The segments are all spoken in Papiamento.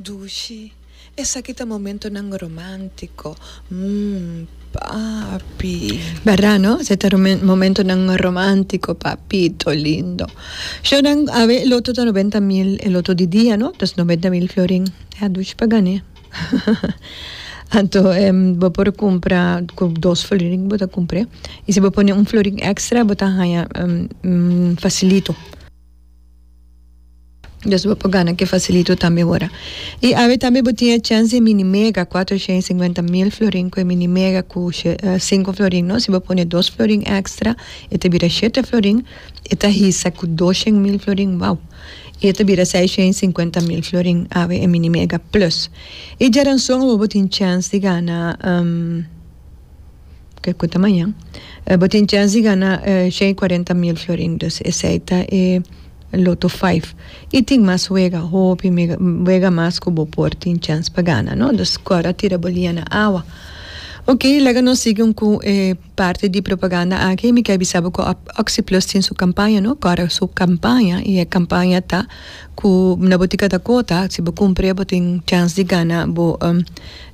Dushi, Esaki ta momentonan romántico, mm, papi. Berdad no? Esaki ta momentonan romántico, papito lindo. Shonan, Awe e loto ta noventa mil, e loto di dia, no? Tos noventa mil florin. Ya, Dushi pa gané. Anto, em, bo por kumpra ku dos florin ku bo ta kumpr'é. I si bo pone un florin èkstra, bo ta haña, em, fasilito. Dos bo por gana ke fasilito tambe ora. I awe tambe bo tin e chèns di e mini mega, kuater shen i singwenta mil florin ku e mini mega ku sinku florin no. Si bo pone dos florin èkstra e ta bira shete florin, e ta hisa ku dos shen mil florin, wow! I e ta bira seis shen i singwenta mil florin awe e mini mega plus. I djaranson awo bo tin chèns di gana. ke ku ta maña, bo tin chèns di gana shen i kuarenta mil fiorin. Dus esei ta e loto vijf. I tin mas wega, hopi wega mas ku bo por tin chèns pa gana, no? Dus kòrda a tira bo liña na awa. Ok, laga nos sigui un ku e parti di propaganda aki. Mi ke a bisa bo ku Oxyplus tin su kampaña, no? Kòrda su kampaña, i e kampaña ta ku na botika ta kota. Si bo kumpre bo tin chèns di gana bo.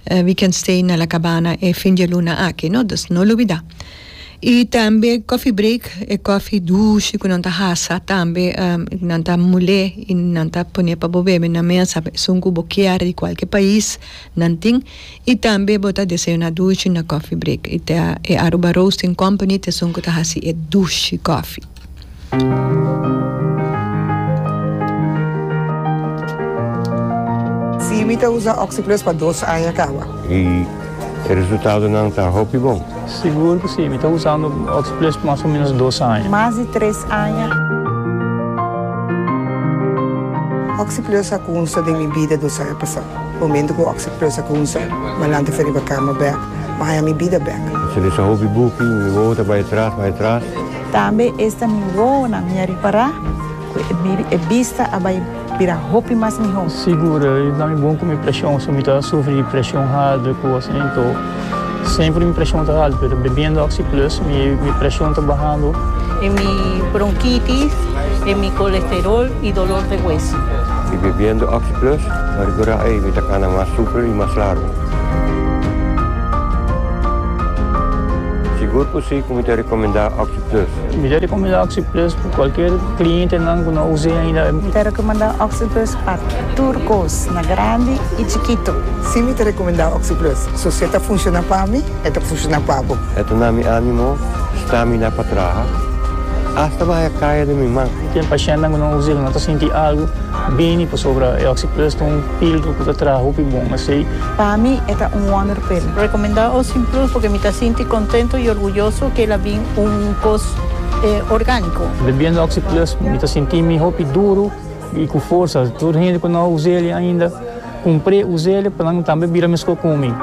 We can stay na La Cabana e fin dialuna aki no, dus no lubida. Y tambe coffee break, e coffee dushi cu nan ta hasa tambe nan ta mule y nan ta pone pa bo bebe na mesa esun cu bo kier di cualkier pais nan tin y tambe bo ta desayuna dushi na coffee break y ta e Aruba Roasting Company ta esun cu ta haci e dushi coffee. Si mi ta usa Oxyplus pa dos aña kaba. Y e resultadonan ta hopi bon. Sigur cu si, mi ta usando Oxyplus pa mas o menos dos aña. Mas di tres aña. Oxyplus a cunsa den mi bida dos aña pasa. Momento cu Oxyplus a cunsa, Malanta fia riba cama bek, ma haña mi bida bek. Mi sali sa hopi buki, mi wowo ta bay atras, bay atras. Tambe esta mi wowonan mi a ripará ku e bista a bai bira hopi mas mihó. Sigur, i na mi bon ku mi preshon, so mi ta sufri di preshon hardu ku gosa den too. Semper mi preshon ta haltu, pero bebiendo Oxi Plus mi preshon ta bahando. E mi bronkitis, e mi kolesterol i dolor de hueso. I bebiendo Oxi Plus ta rikurá ei mi ta kana mas super i mas largu. Sigur ku si. Por mi ta recomenda OxiPlus? Mi ta recomenda OxiPlus pa cualkier clientenan cu no a us'e ainda. Mi ta recomenda OxiPlus pa tur cos, na grandi y chikito. Si, mi ta recomenda OxiPlus. So si e ta funciona pa mi, e ta funciona pa bo. E ta na mi animo, stamina pa traha, hasta bahaya caya den mi man. Ten pacientnan cu no a us'e cu no ta sinti algo bini pasobra e OxiPlus ta un filtro cu ta traha hopi bon. Asey. Pa mi e ta un wonderpil. Recomenda Ocean Plus porque mi ta sinti contento y orguyoso que el a bin un cos organico. Bebiendo Oxy Plus mi ta sinti mi hopi duro y cu forsa. Tur hende cu no a usa el ainda, cumpre, usa el pa nan tambe bira mesco cu mi.